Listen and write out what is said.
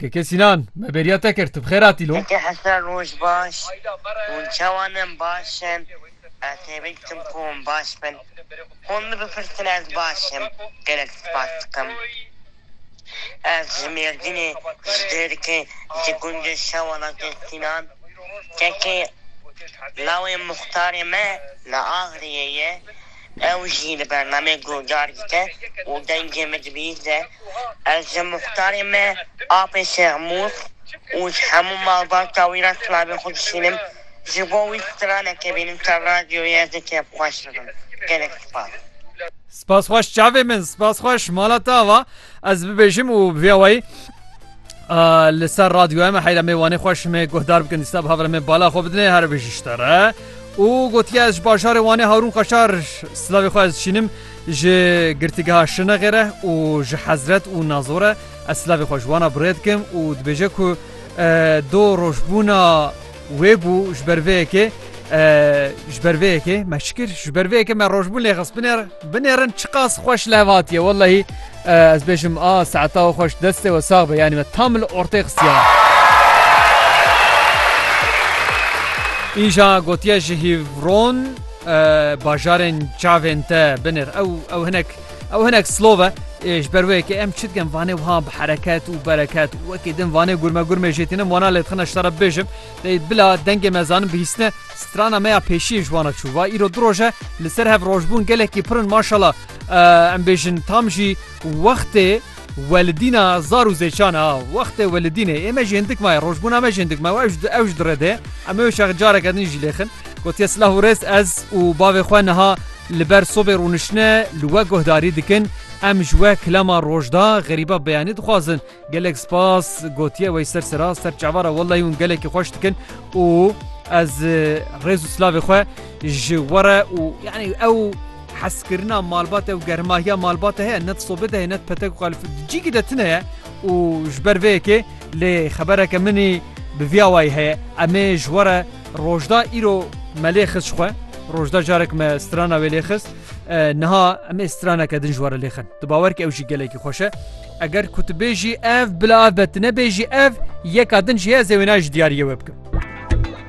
Keke Sinan, me bêriya te kir, tu bi xêr hatî lo? Keke Hesen roj baş, hûn çawa ne baş in, ez hêvî dikim ku hûn baş bin, hûn min bipirsin ez baş im, gelek spas dikim. Ez ji Mêrdînê, ji Dêrikê, ji gundê Şewelatê Sinan. Keke lawê muxtarê me li Agriyê ye. Ew jî li bernameyê guhdar dike û dengê min dibihîze, Ez ji muxtarê me apê Şexmûs û ji hemû malbata wî re silavên xwe dişînim, ji bo wî straneke bînim ser radyoyê ez ê kêfxweş bibim. Gelek spas. Spas xweş çavê min, spas xweş. Mala te ava ez bibêjim û bi vî awayî. Li ser radyoya me heyra me wanê xweş me guhdar bikin dîsta bi havra me bala xwe bidinê here bêjî ji te re. û gotiye ez ji bajarê wanê Harûn Qaşar silavê xwe ez dişînim ji girtîgeha şinexê re û ji hezret û nazo re ez silavê xwe ji wana birêdikim û dibêje ku do rojbûna Wê bû ji ber vê yekê ji ber vê yekê me çi kir ji ber vê yekê me rojbûn lê xist binêr binêrin çiqas xweş lev hatiye wellehî ez bêjim a saeta we xweş destê we sax be yanî me tam li ortê xistiye. Îja gotiye ji hîvron bajarên çavên te binêr ew ew hinek Ew hinek slov e ji ber wê yekê em çi dikin vanê wiha bi hereket û bereket wekî din vanê gurme gurmê jê tînim wana lê dixine ji te re bibêjim dê bila dengê me zanin bihîstine strana me ya pêşiyê ji wana çû va îro du roj e li ser hev rojbûn gelekî pirin maşala em bêjin tam jî wextê Welidîna zar û zêşan a. Wextê welidînê ê me ji hindik maye, rojbûna me ji hindik maye û ew ji ew ji dirê dê. Em ê wê şex careke din jî lêxin. Gotiye silah û rêz ez û bavê xwe niha li ber sobê rûnişine li we guhdarî dikin. Em ji we kilama rojda, xerîba beyanî dixwazin. Gelek spas gotiye wey ser sera ser çava re wellahî hûn gelekî xweş dikin û ez rêz û silavê xwe ji we re û yanî ew Heskirina malbat e û germahiya malbat e heye ne di sobê de heye ne di petek û qalifî di cîkî de tune ye û ji ber vê yekê lê xebereke min î bi viya wayî heye em ê ji we re rojda îro me lê xist ji xwe rojda carek me strana wê lê xist niha em ê straneke din ji we re lê xin tu bawer kî ew jî gelekî xweş e eger ku tu bêjî ev bila ev be tu nebêjî ev yeka din jî heye ez ê wêne ji diyariyê we bikim.